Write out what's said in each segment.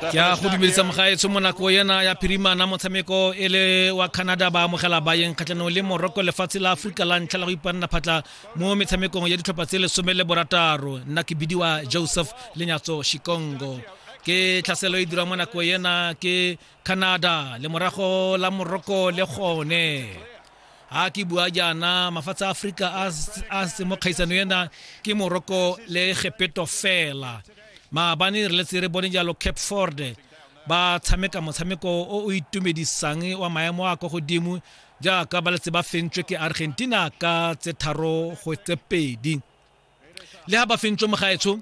ke a go dumedisa mogaetsho mo nako ena ya phirimana motshameko e le wa canada ba amogela bayeng kgatlhanong le morocco lefatshe la aforika la ntlha la go ipanna phatla mo metshamekong ya ditlhopha tse lesome le borataro nna ke bidiwa joseph lenyatso shikongo ke tlhaselo e dirwa mo nako ena ke canada le morago la morocco le gone ha ke bua jaana mafatshe a aforika a se mo kgaisano ena ke moroko le gepeto fela maabane re letse re bone jalo cape ford ba tshameka motshameko o o itumedisang wa maemo a kwa godimo jaaka ba letse ba fentswe ke argentina ka tse tharo go tse pedi le ha ba fentswe mogaetsho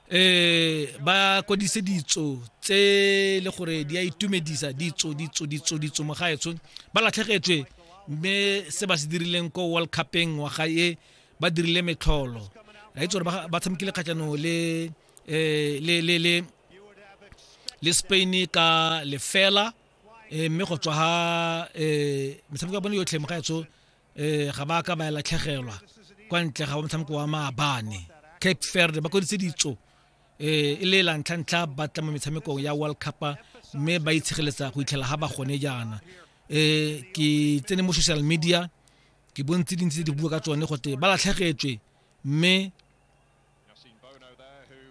eh ba kodise ditso tse le gore di a itumedisa ditso ditso ditso ditso mo gaetsho ba latlhegetswe mme se ba se dirileng ko world cupeng wa ga e ba dirile metlholo ra itse gore ba tshamekile kgatlhanong le eh, le le le le spain ka lefela eh, mme go tswa ga eh, metshameko ya bone yotlhe mo gaetsho eh ga ba ka ba latlhegelwa kwa ntle ga motshameko wa maabane cape verde ba koditse ditso eh e le la ntlha ntlha ba tla mo metshamekong ya world cup mme ba itshegeletsa go itlhela ga ba gone jaana eh ke tsene mo social media ke bontse dintsi tse di bua ka tsone gote ba latlhegetswe mme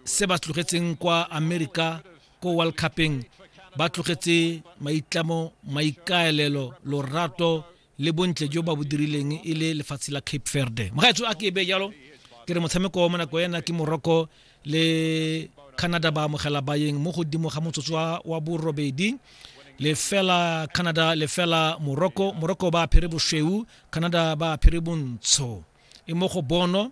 se ba tlogetseng kwa amerika ko world cupeng ba tlogetse maitlamo maikaelelo lorato le bontle jo ba bo dirileng e le lefatshe la cape verde mogaetso a ke be jalo ke re motshameko wa monako ena ke morocco le canada ba amogela bayeng mo godimo ga motsotso wa borobedi lefela canada lefela morocco morocco ba apere bošweu canada ba apere bontsho e mo go bono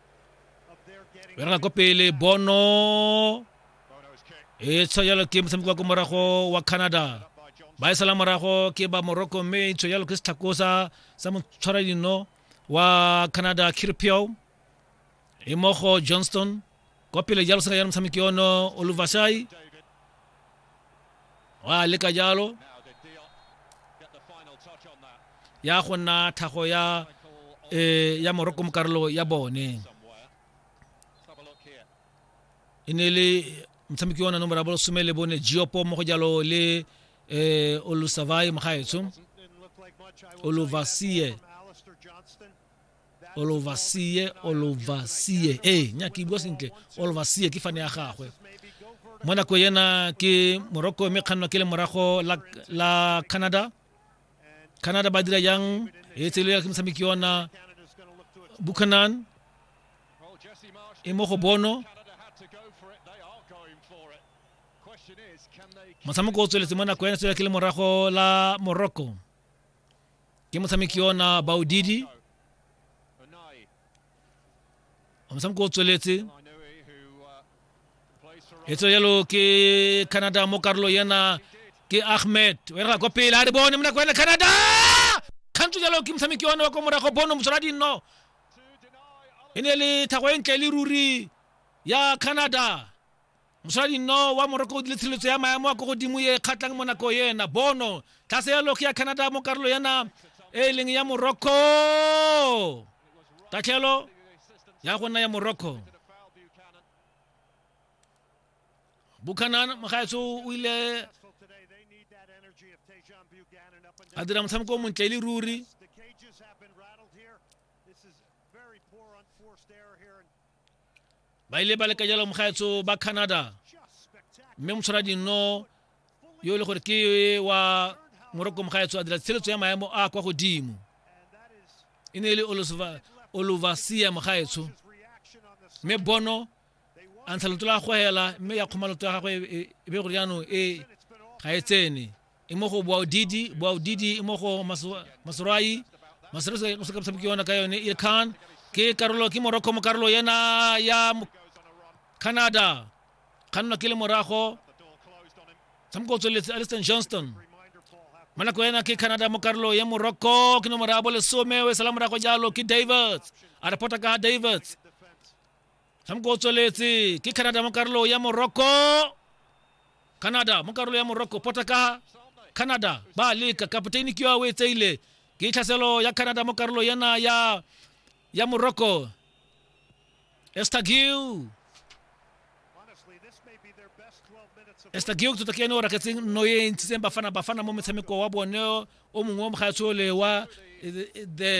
re na ko pele bono e tsho jalo ke motshameko wa ko morago wa canada ba e sala morago ke ba morocco mme e tsho jalo ke setlhakosa sa motshwara dino wa canada kirpio e mogo johnston kwa pele jalo sena jalo motshameki ono oluvashai wa leka jalo ya go nna tlhago ya e ya moroko mo karolo ya bone e ne le motshameki wa nomoro ya bolesome le bone geopo mo go jalo le um olusavai mogaetsho oluvasie olovasie olovasie ee nya ke bua sentle olovasie ke fane ya gagwe mo nako yena ke morocco mme kgannwa ke le morago la, la canada canada ba dira yang e tselela ke motshameki yona buchanan e mo go bono motshameko o tsweletse mo nako yena tswela ke le morago la morocco ke motshameki yona baodidi motshameko o tsweletse e tswe yalo ke canada mo karolo yena ke ahmed o era kwa pele a re bone mo nako ena canada kgantso jalo ke motshameki yone wa kwa morago bono mosola dinno e ne le thago e ntle le ruri ya canada Moshadi nno wa Morokodi le tshireletso ya maemo a ko godimo e kgatlhang mo nako ena. Bono, tlase ya loge ya Canada mo karolo yana e e leng ya Morocco. Tatlhelo ya go nna ya Morocco. Buchanan mogaetso o ile a dira motshameko o montle e le ruri ba ile ba leka jalo mogaetso ba canada mme motshwara dinno yo e le gore ke wa moroko mogaetso a dira tsheletso ya maemo a kwa godimo e ne e le olovasia mogaetsho mme bono a ntsha loto la goela mme ya kgoma loto ya gagwe e, e, e be gore jaanong e ga e tsene e mo go boaodidi boaodidi e mo go masoroai masoroai o se ka tshameka yona ka yone e khan ke karolo ke morocco mo karolo yena ya canada kgannwa ke le morago tshameko o tsweletse aliston johnston mo nako ena ke canada mo karolo ya morocco ke nomoro ya bolesome o e sala morago jalo ke davids a reporta ka davids tshamoko o tsweletse ke canada mo karolo ya morocco canada mo karolo ya morocco pota ka canada ba leka kapoteni ke yo o e tseile ke tlhaselo ya canada mo karolo yana ya ya morocco estagiu estagiu tota ke ene o raketseng nno e ntshitseng bafana bafana mo motshameko wa bone o mongwe o mogaetsole wa eh, the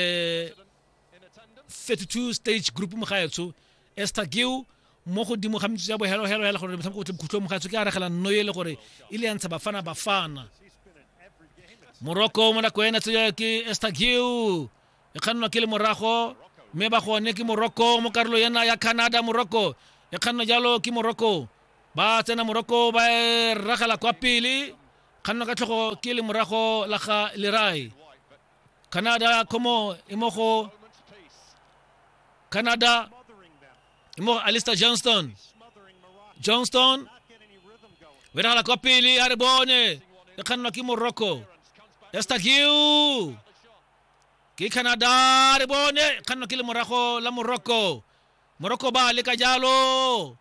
32 stage group mogaetsho esther geo mo godimo ga metsotso ya bohelohelo hela gore motshameko o tle bokhutlong mogaetsho ke a regela nno e le gore e le ya ntsha bafana bafana morocco mo nako ena tseya ke esther geo e kgannwa ke le morago mme ba gone ke morocco mo karolo ena ya canada morocco e kgannwa jalo ke morocco ba tsena morocco ba e ragela kwa pele kgannwa ka tlhogo ke le morago la ga lerai canada ko mo e mo go canada e mo go alistair johnston johnston o diragala kwa pele a re bone e kgannwa ke morocco estagiu ke canada a re bone e kgannwa ke le morago la morocco Morocco ba le ka jalo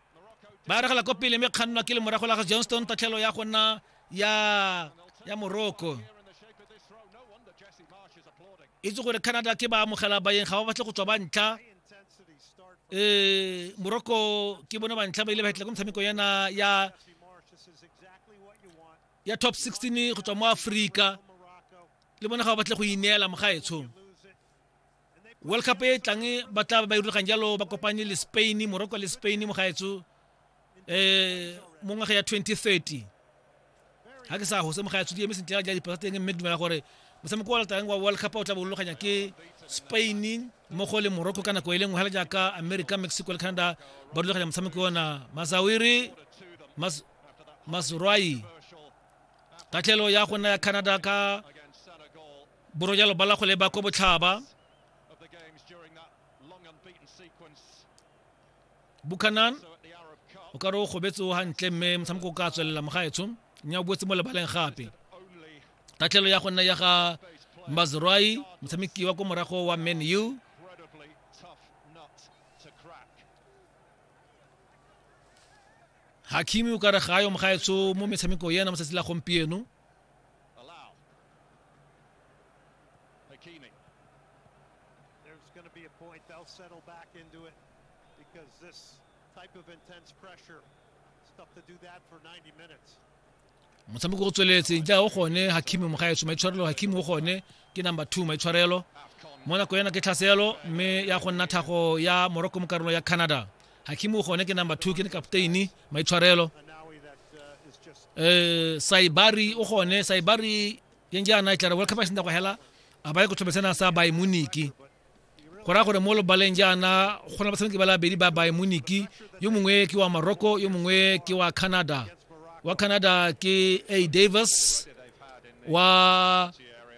ba regela ko pele mme kgannwa ke le morago la ga johnston tatlhelo ya go nna ya ya morocco itse gore canada ke ba amogela bayeng ga ba batle go tswa ba ntlha um morocco ke bone ba ntlha ba ile ba hetla ko metshameko yana ya ya top 16 go tswa mo aforika le bone ga ba batle go ineela mogaetsho world cup e e tlang ba tla ba irulagang jalo ba kopane le spain morocco le spain mo gaetso um mo ngwaga ya 2030 ga ke sa gose mo gaetso di eme sentle ja dipasa teng mme ke dumela gore motshameko wa latang wa world cup o tla bolologanya ke spain mmogo le morocco ka nako e le nngwe fela jaaka america mexico le canada ba rulaganya motshameko ona masawiri mas, masrwai tatlhelo ya go nna ya canada ka Borojalo ba la go leba ko botlhaba. Buchanan o ka re o gobetse o gantle mme motshameko o ka tswelela mogaetsho mme o boetse mo lebaleng gape tatlhelo ya go nna ya ga mazroi motshameki wa ko morago wa man u hakimi o ka re ga yo mogaetsho mo metshameko ena mo tsatsi la gompieno Allow. Hakimi. There's going to be a point. They'll settle back into it because this type of intense pressure, it's tough to do that for 90 minutes. motshameko o tsweletseng ja o gone hakimi mogaetso maitshwarelo hakimi o gone ke number two maitshwarelo mo nako ena ke tlhaselo mme ya go nna thago ya morocco mo karolo ya canada hakimi o gone ke number two ke ne kapteini maitshwarelo eh saibari o gone saibari yen jaana e tlare world cup a senda go hela a ba ye go thobetsena sa bay muniki go raya gore mo lobaleng jaana go na batshameki ba labedi ba bay muniki yo mongwe ke wa morocco yo mongwe ke wa canada wa canada ke a davis wa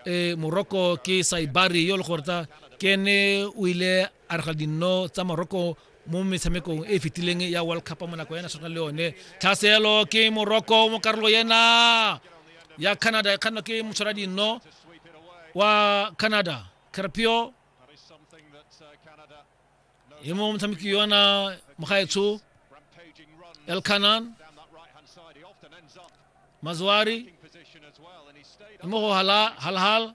eh, morocco ke saibari yo le gore ta ke ene o ile A re ga dinno tsa Morocco mo metshamekong e e fetileng ya World Cup mo nako ya national le yone tlhaselo ke Morocco mo karolo ena ya Canada e kganwa ke motshwara dinno wa Canada Carpio e mo motshameki yona mogaetsho Elkanan Mazwari e mo go Halahal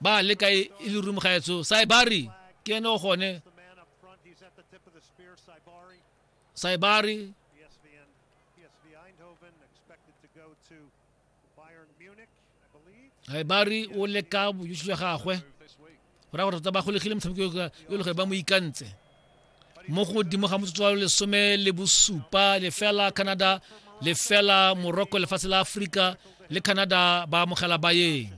ba le ka e le room ga etso saibari ke ene o gone saibari saibari o le ka bojusi jwa gagwe go raya gore tota ba golegile motshameko yo le gore ba mo ikantse mo godimo ga motsotso wa lesome le bosupa lefela canada lefela morocco lefatshe la aforika le canada ba amogela bayeng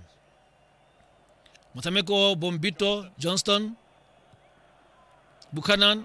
motshameko bombito johnston buchanan